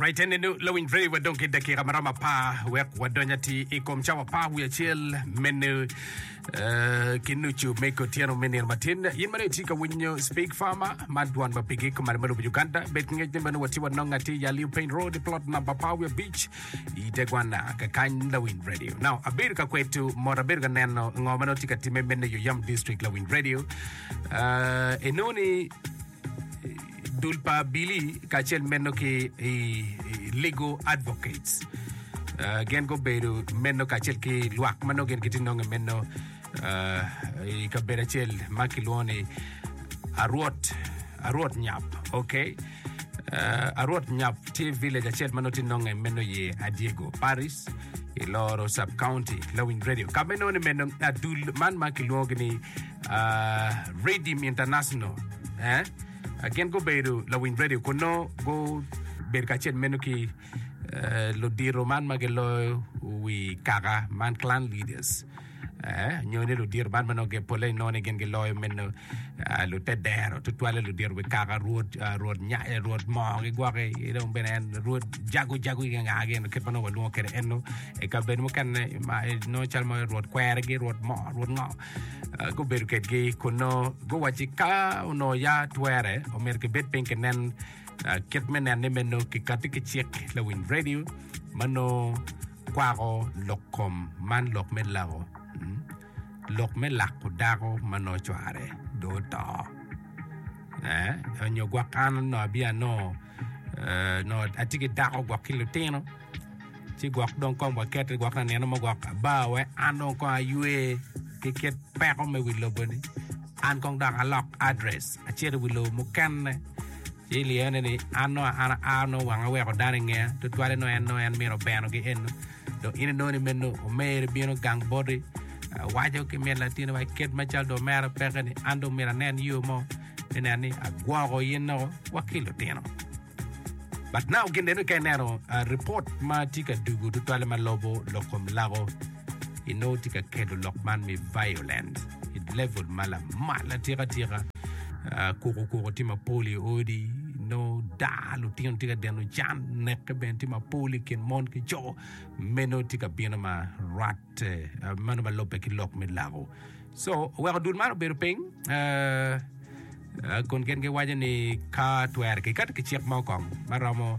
Right en inu lawiny very wa dong ki dakika maromo apar wek wadony ati i kom cawa apar wiye acel mene eh, ki nucu me kotyeno me nino matin in mene itye ka winyo speak farmer man dwan ma pigi kumane me lobo Uganda bed ki ngec ni mene watye wanongo ati i Yaliu Piny Road plot number apar wiye abic i Tegwana kakany lawiny radio now abedo ka kwetu mot abedo ka neno ngo mene tye ka timme mene yo yam district lawiny radio uh, enoni dul pa Billy kacel meno ki i Legal Advocates. Uh, gin gubedo meno kacel ki lwak ma nongo gin gitye nonge meno uh, i kabedo acel ma kilwongo ni Arwot Arwot Nyap. Okay. Uh, Arwot Nyap tye village acel ma nongo tye nonge meno ye Adiego Paris i loro sub county Lawiny Radio. Ka meno ni meno adul man ma kilwongo ni Redeem International, gin gubedo lawiny redio kun nongo gubedo kacel meno ki ludito man ma giloyo wi kaka man clan leaders nyo ni ludito man ma nongo polle ni nongo ni gin giloyo meno lute dero tutwalle ludito wi kaka rwod moo gigwoki ki dong bene en rwod jago jago ki nga gin kit ma nongo walwongo kwede eno i kabedo mukene nongo calo rwod kwergi rwod moo rwod ngo Ah, gubedo kedgi kun nongo guwacci ka onongo ya twere omyero kibed piny kinen ah, kit me nenne me nongo kikatti ki cik lawiny radio ma nongo kwako lok kom man lok me lako mm, lok me lako dako ma nongo cware do oto eh, onyo gwok an onongo abia nongo nongo atye ki dako gwok ki lutino ci gwok dong kong wakete gwok na nino mo gwok bar wai an dong kong aywe ki kit peko me wi lobo ni an kong dok alok address acito i wi lobo mukene ci iliyone ni an nongo an aa nongo wanga weko dano i ngeya tutwale nongo en nongo en mino beno ki eno dong in inongo ni meno omeri bino gang boti waco ki min latino wa kit macal dong omera peke ni an dong myero anen yo mo ni nen ni agwoko in nongo wa ki lutino. But now gin neno ka ineno uh, report ma tye ka dugo tutwale ma lobo lok kom lago ino tye ka kelo lok man me violent i level ma lamal atika tika uh, kuko kuko tye mapol i odi ino daa lutino tye ka deno can neke bene tye mapol i kin mon ki co meno tye ka bino ma rat eh, meno ma lobbe ki lok me lago So oweko dul man obedo piny kun gin giwaco ni ka twere kiketo ki cik mo kong ma romo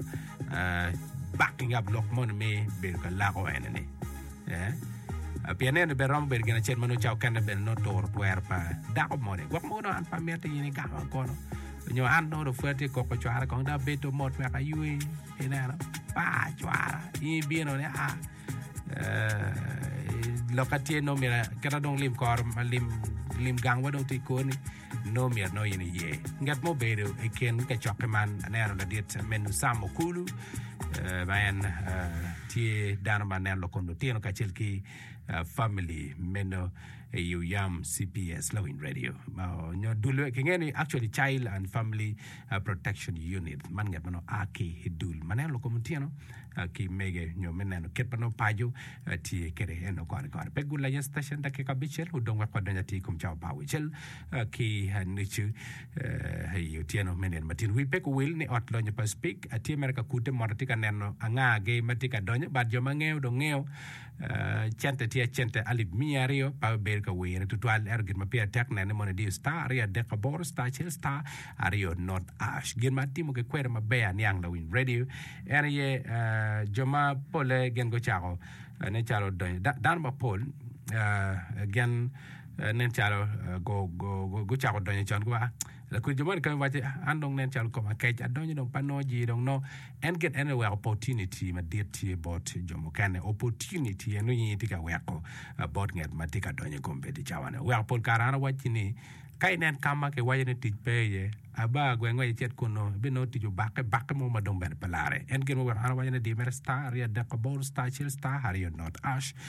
bak ki ngab lok moni me bedo ka lako ene-ni pien eno bene romo bedo gin acel ma nongo cawa okene bene nongo turo twero pa dako moni gwok mogo nongo an pe amiti in igamo an kono nyo an nongo dong pwod atye koko cwara kong dong abedo mot wek aywe ineno pa cwara in ibino ni aa lok ka tye nongo myero kite dong lim kor lim gangwa dong tye kor-ni nongo myero nongo in iye ngat ma obedo i kin kacokke man aneno ladit me Nusam Okulu ma en tye dano ma neno lok kom lutino kacel ki famili meno i Uyam cps Lawiny Radio nyo dul-le kingeo ni actually Child and Family Protection Unit, man ngat ma nongo a ki i dul ma neno lukom otyeno ki mege nyo me neno kit ma nongo paco tye kwede eno kore kore. Pe gulenya citacion dakika abicel odong wek wadony atir i kom cawa pa aucel ki nucu i otyeno me nino matino. Wi pe kuwil ni ot lonyo pa Speke tye mere ka kute moto atye ka neno angagi ma tye ka donyo but jo ma ngeyo dong ngeyo Cente tye acente alip miya aryo pa bedo ka wire tutwal ento gin ma pire tek nene mono idiyo star aryo adek aboro star acel star aryo not ash gin ma atimo ki kwede maber aniang lawiny radio en aye jo ma pole gin gucako ne calo donyo dano mapol gin nen calo gucako donyo con giwaco Lakwena jo moni kany wacce, An dong nen calo koma kec, adonyo dong pe anongo jir dong nongo. En gin ene wek opportunity madit tye bot jo mukene. Opportunity en nongo in itye ka weko bot nget ma tye ka donyo i kom bedi cawa ne. Weko pol kare an awacci ni ka inen ka ma kiwaco ni tic pe iye, aba gwe ngwec icit kunnu, ibinongo tic obakke bakke mo ma dong bene pe larre. En gin ma weko an awaco ni di mere star aryo adek aboro star acel star aryo not ash.